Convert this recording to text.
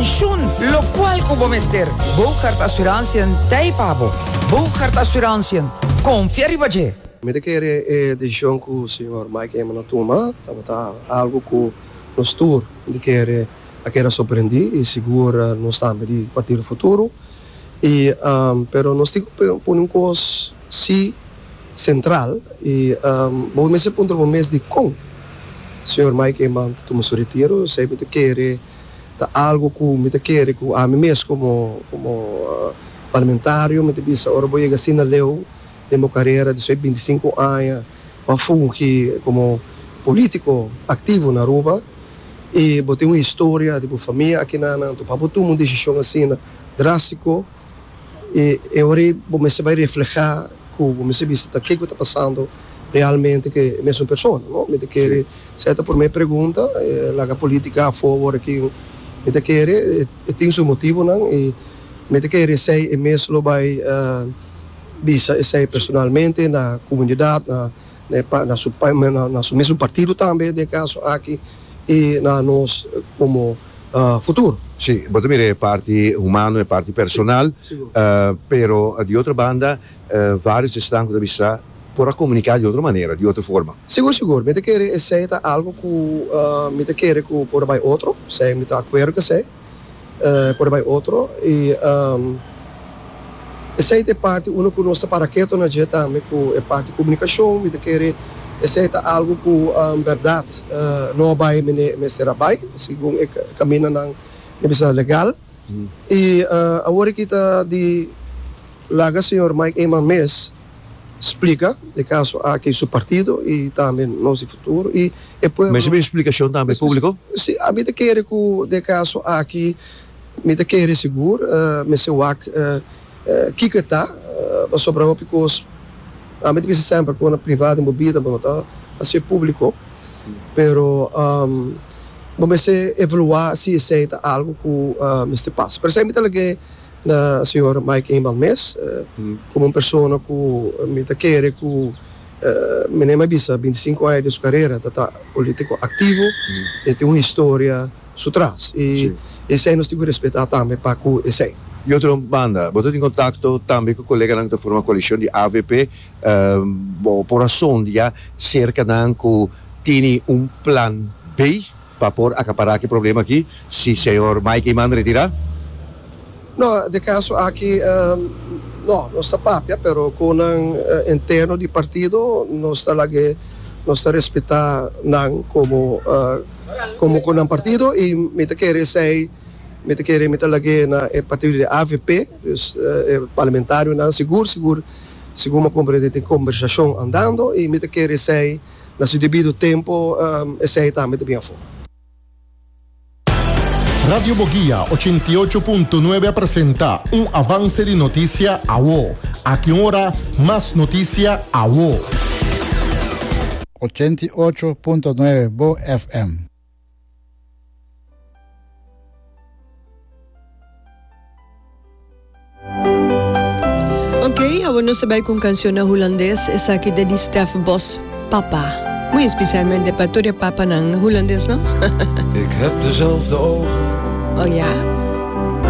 Shun locual cu bo mester. Bougaard Assurantiën t'ei pa bo. Bougaard Assurantiën, confia riba dje! Mi ta kere e decision cu señor Mike Eman a tuma tabata algo cu nos tur di kere a keda sorprendi y sigur nos tambe di partido futuro y pero nos tin cu pone un cos si central y bo mester puntra bo mes di con señor Mike Eman ta tuma su retiro esey mi ta kere ta algu ku mi ta kere ku ami mes komo komo parlamentario mi ta bisa ora bo yega asin na leu den bo karera di so'i binti i sinku aña ku a fungi komo polítiko aktivo na Aruba i bo tin un historia di bo famia akinanan anto pa bo tuma un desishon asina drástiko. y e hora ey bo mester bay refleha cu bo mester bisa ta kico ta pasando realmente cu e mesun persona, no? Mi ta kere sey ta prome pregunta, laga politica afo awor aki, mi ta kere e tin su motibonan y mi ta kere esey e mes lo bay bisa esey personalmente na comunidad, na na su mesun partido tambe den e caso aki y na nos como. futur. Sí, bo ta mira e parti humano, e parti personal, pero di otro banda varios esnan cu ta bisa por a comunica di otro manera, di otro forma. Sigur, sigur, mi ta kere esey ta algo cu mi ta kere cu por a bay otro, esey mi ta acuerdo cu esey, por a bay otro y. Esei ta e parti unda ku nos ta para ketu na dje tambe ku e parti komunikashon. Mi ta kere esei ta algu ku bèrdat no a bai mende e mester a bai, segun e kamindanan mi bisa legal. I awor aki ta di laga señor Mike Eman mes splika e kaso aki su partido i tambe nos di futuro i e pueblo. Mester mihó splikashon tambe públiko? Si, mi ta kere ku den e kaso aki Mi ta kere sigur mester wak kiko e ta, pasobra hopi kos ami ta bisa semper ku na priva den bo bida bo no ta hasié públiko, pero bo mester evaluá si esei ta algu ku mester pasa. Pero esei mi ta lag'é na señor Mike Inbal mes, komo un persona ku mi ta kere ku mi na e mai bisa binti sinku aña di su karera ta ta polítiko aktivo, e tin un historia. su tras i esei nos tin ku respetá tambe pa ku esei. Di otro banda, bo ta tin kontakto tambe ku koleganan ku ta forma koalishon di avp. Bo por a sondia serka nan ku tini un plan B pa por akapará ki problema aki si señor Mike Eman retirá? No, den kaso aki no. Nos ta papia pero ku nan interno di partido, nos ta lag'é, nos ta respetá nan komo. Komo ku nan partido i mi ta kere esei, mi ta kere mi ta lag'é na e partido di avp, dus e parlamentarionan sigur sigur, segun mi a komprendé tin kombersashon andando i mi ta kere esei na su debido tempu esei tambe ta bin afó. Radio Boguia ochenta i ocho punto nuebe a presenta un avanse di notisia awo. Aki un ora mas notisia awo. ochenta i ocho punto nuebe Bo FM. Ok, awor nos ta bai cu un cancion na Hulandes, esaki ta di Stef Bos, Papa. Muy especialmente pa tur e papanan Hulandes, no? Ik heb dezelfde ogen. Oh, ya?